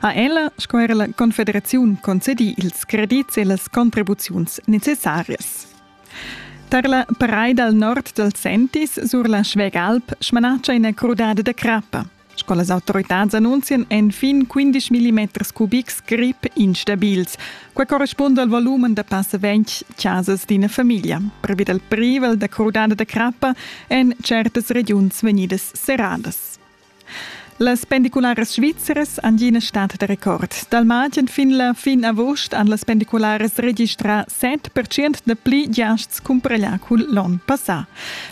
ha ella sco era la Confederaziun concedì ils credits e las contribuziuns necessarias. Tar la paraid dal nord dal Sentis sur la Schwegalp smanatscha ina crudada da crappa. Sco las autoritads annunzian èn fin 15 mm cubics grip instabils. Quai correspunda al volumen da passa 20 chasas d'ina famiglia. Previ dal privel da crudada da crappa en certas regiuns vegnidas serradas. Las pendicularas svizzeras han ina stat da record. Dal martg fin la fin agost han las pendicularas registrà 7% da pli giasts cumpareglià cun l'onn passà.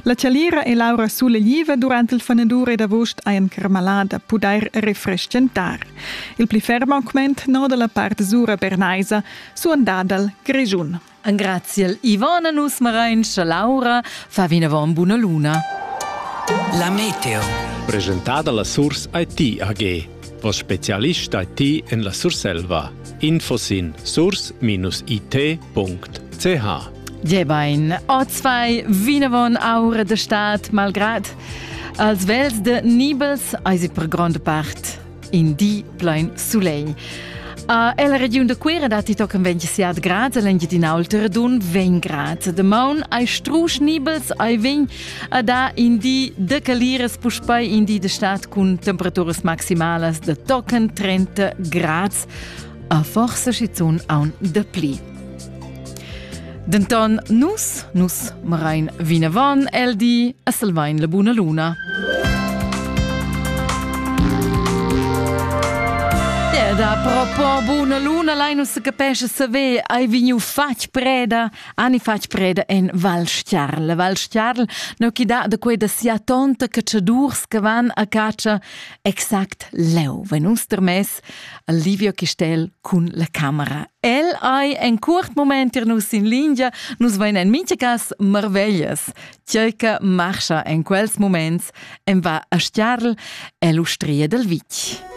La Chalira e Laura Sulegliva durant il fanadur ed agost hajan carmalà da pudair refreschentar. Il pli ferm augment noda la part sura bernaisa, suandà dal Grischun. Engraziel Ivana nus marain cha Laura fa vinavant buna luna. La meteo. Presentada la Surs IT AG, voss spezialist IT en la Surselva. Info sin surs-it.ch Ja bain, ozvai vinavon aur de stad malgrad als vels de Nibels eisi per grande part in di plein sulegl. A ella regiun da Cuera datti tochen 27 grad l'Engiadin'Alta dun 20 grad. De maun ai strusch nibels ai vegn a da in di de caliras puspei in di de stat cun temperaturas maximalas de tochen 30 grads. A forsa schizun aun de pli. Denton nus, nus marain vinavon el di e salvain la buna luna. Da propo buna luna Linus se capesce saver hai vegnu fatg preda ani fatg preda en Val Stiarl Val Stiarl no chi da da queda sia tonta cacciadurs che van a caccia exact leu wenn uns termes Livio Chistel cun la camera. El ei en curt moment ir nus in lingia, nus vein en mintgas marveglias. Tgei che marscha en quels moments en va a Stiarl, è l'ustria del Vitg.